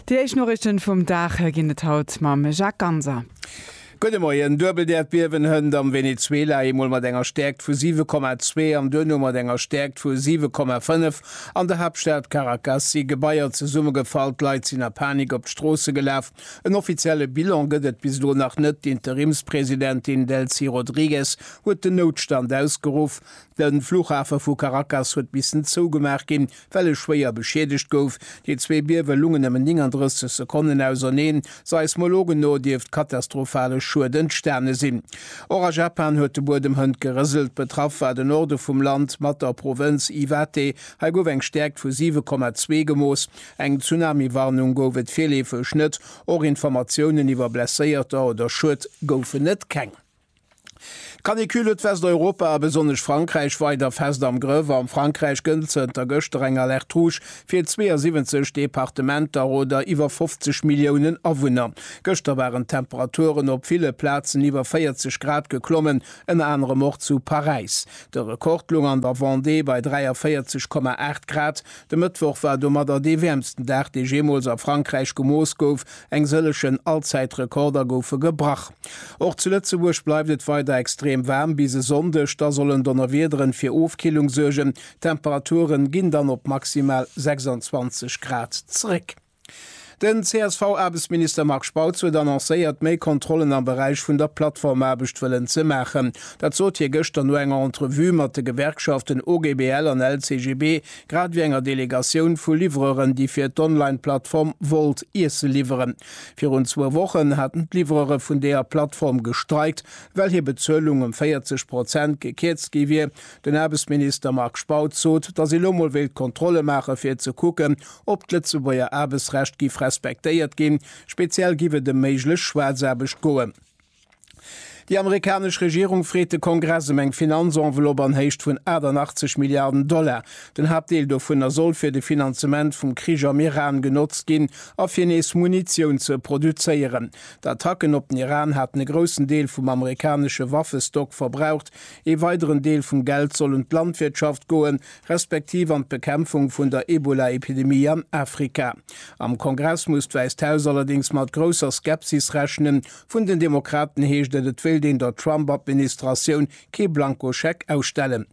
Déi éischt Noriichten vum Dag ginn et haut mam Jacques Ganser. Gudde Moien, Duebelt Äerdbiewen hënt am Venezuela, eemol mat enger Stäerkt vu 7,2 an duerno mat enger Stäerkt vu 7,5. An der Haaptstad Caracas si Gebaier zesummegefall, d'Leit sinn a Panik op d'Stroosse gelaf. En offizielle Bilan gëtt et bis elo nach net. D'Interimspresidentin Delcy Rodriguez huet den Noutstand ausgeruff. De Flughafe vu Caracas huet missen zougemaach ginn, well e schwéier beschiedegt gouf. Déi zwee Biewe lungen nëmmen 39 Sekonnen auserneen. Seismologen no dierft katastrophale Schued entstane sinn. Och a Japan huet de Buedem hënt gerëselt. Betraff war de Norde vum Land mat der Provënz Iwate. Hei gouf eng Stäerkt vu 7,2 gemooss. Eng Tsunami-Warnung gouf et virleefeg net. Och Informatiounen iwwer Blesséierter oder Schued goufen et keng. D'Canicule huet Westeuropa a besonnesch Frankräich weider fest am Grëff. Am Frankräich gëllt zënter gëschter eng Alerte Rouge fir 72 Departementer oder iwwer 50 Milliounen Awunner. Gëschter waren d'Temperaturen op ville Plazen iwwer 40 Grad geklommen, ënner anerem och zu Paräis. De Rekord loung an der Vendée bei 43,8 Grad. De Mëttwoch war domadder dee wäermsten Dag, dee jeemools a Frankräich gemooss gouf, Eng sëllegen Allzäitrekorder goufe gebrach. Och zu Lëtzebuerg bleift et weider extrem waarm bis e Sonndeg, da sollen Donnerwiederen fir Ofkillung suergen. D'Temperature ginn dann op maximal 26 Grad zeréck. Den CSV-Aarbechtsminister Marc Spautz huet annoncéiert, méi Kontrollen am Beräich vun der Plattformaarbecht wëllen ze maachen. Dat sot hie gëschter no enger Entrevue mat de Gewerkschaften OGBL an LCGB, Grad ewéi enger Delegatioun vu Livreuren, déi fir d'Online-Plattform Wolt Iesse liwweren. Virun zwou Wochen haten d'Livreuere vun deeër Plattform gestreikt, well hir Bezuelung ëm 40 Prozent gekierzt gi wier. Den Aarbechtsminister Marc Spautz sot, datt ee lo mol wéilt Kontrolle maache fir ze kucken, ob d'Lëtzebuerger Aarbechtsrecht giff respektéiert ginn. Speziell giff et ëm méiglech Schwaarzaarbecht goen. Déi amerikanesch Regierung freet de Kongress ëm eng Finanzenveloppe an Héicht vun 88 Milliarden Dollar. Den Haaptdeel dovunner soll fir de Finanzement vum Krich am Iran genotzt ginn a fir nees Munitioun ze produzéieren. D'Attacken op den Iran haten e groussen Deel vum amerikanesche Waffestock verbraucht. Ee weideren Deel vum Geld soll un d'Landwirtschaft goen, respektiv an d'Bekämpfung vun der Ebola-Epidemie an Afrika. Am Kongress muss d'Wäisst Haus allerdéngs mat grousser Skepsis rechnen. Vun den Demokraten heescht et, et wéilt een der Trump-Administratioun kee Blankoscheck ausstellen.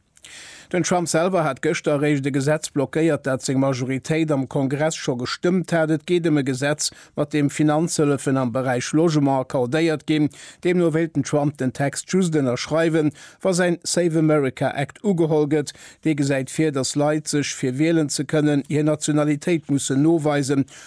Den Trump selwer hat gëschter eréischt e Gesetz blockéiert, dat seng Majoritéit am Kongress scho gestëmmt hat. Et geet ëm e Gesetz, mat deem Finanzhëllefen am Beräich Logement accordéiert ginn. Deemno wéilt den Trump den Text just ënnerschreiwen, wa säin Save America Act ugeholl gëtt. Dee gesäit vir, datt Leit sech, fir wielen ze kënnen, hir Nationalitéit mussen noweisen,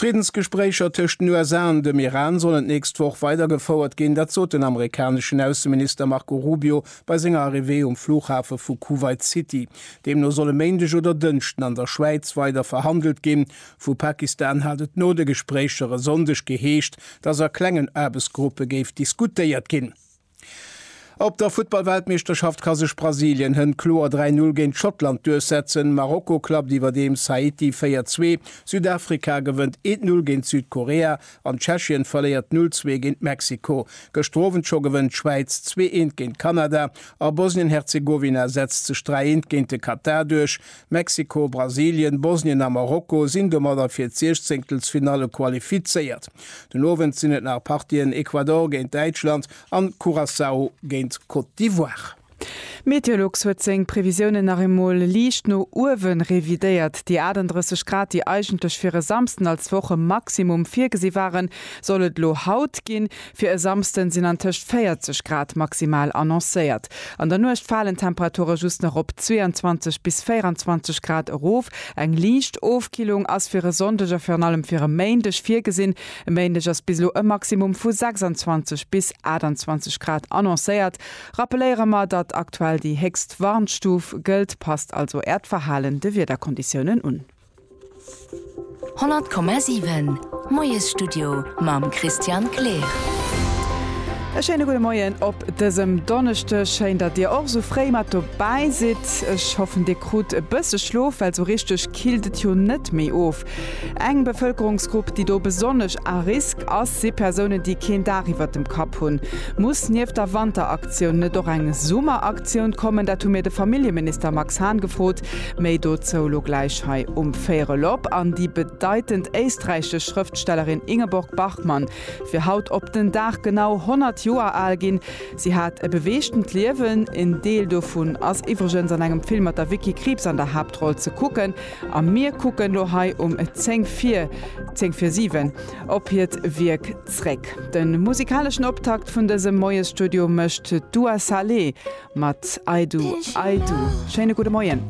D'Friddensgespréicher tëscht den USA an dem Iran sollen d'nächst Woch weidergefouert ginn. Dat sot den amerikaneschen Ausseminister Marco Rubio bei senger Arrivée um Flughafe vu Kuwait City. Deemno soll e Méindeg oder Dënschden an der Schwäiz weider verhandelt ginn. Vu Pakistan hat et no de Gespréicher e Sonndeg geheescht, datt a klengen Aarbechtsgruppe géif diskutéiert ginn. Op der Futtballweltmeeschterschaft ka sech Brasilien hënt kloer 3 Null géint Schottland duerchsetzen, Marokko klappt iwwerdeems Haiti 4 Zwee, Südafrika gewënnt 1 Null géint Südkorea an Tschechien verléiert 0 Zwee géint Mexiko. Gëschter Owend scho gewënnt d'Schwäiz 2 Eent géint Kanada a Bosnien-Herzegowina setzt sech 3 Eent géint de Katar duerch. Mexiko, Brasilien, Bosnien a Marokko sinn domadder fir d'Siechzéngtelsfinalle qualifizéiert. Den Owend sinn et nach Partien, Ecuador géint Däitschland an Curaçao géint Côte d'Ivoire. Meteolux huet seng Previsiounen nach eemol liicht no uewe revidéiert. Déi 38 Grad, déi eigentlech fir e Samsden als Wochemaximum virgesi waren, soll et elo haut ginn. Fir e Samsden sinn an tëscht 40 Grad maximal annoncéiert. An der Nuecht falen d'Temperature just nach op 22 bis 24 Grad erof. Eng liicht Ofkillung ass fir e Sonndeg a virun allem fir e Méindeg virgesinn. E Méindeg ass bis elo e Maximum vu 26 bis 28 Grad annoncéiert. Rappeléiere mer, datt aktuell déi héchst Warnstuf gëllt. Passt also Äert Verhalen de Wiederkonditiounen un. 100,7 Moiesstudio mam Christian Kleer. E schéine gudde Moien op dësem Donneschdeg. Schéin, datt Dir och esou fréi mat dobäi sidd. Ech hoffen, Dir krut e bësse Schlof, well sou richteg killt et jo net méi of. Eng Bevëlkerungsgrupp, déi do besonnesch à risque ass, si Persounen, déi keen Daach iwwert dem Kapp hunn. Muss nieft der Wanteraktioun net och eng Summeraktioun kommen? Dat hu mir de Familljeminister Max Hahn gefrot. Méi dozou elo gläich hei um Véierelop. An déi bedeitend éisträichesch Schrëftstellerin Ingeborg Bachmann wier haut op den Dag genau 100 Joer al ginn. Si hat e beweegtent Liewen. En Deel dovun ass iwwregens an engem Film mat der Vicky Krieps an der Haaptroll ze kucken. A mir kucken elo hei um zéng vir zéng vir siwen op hiert Wierk. zréck. De musikaleschen Optakt vun dësem Moiesstudio mécht d'Dua Saleh mat I Do, I Do. Schéine gudde Moien.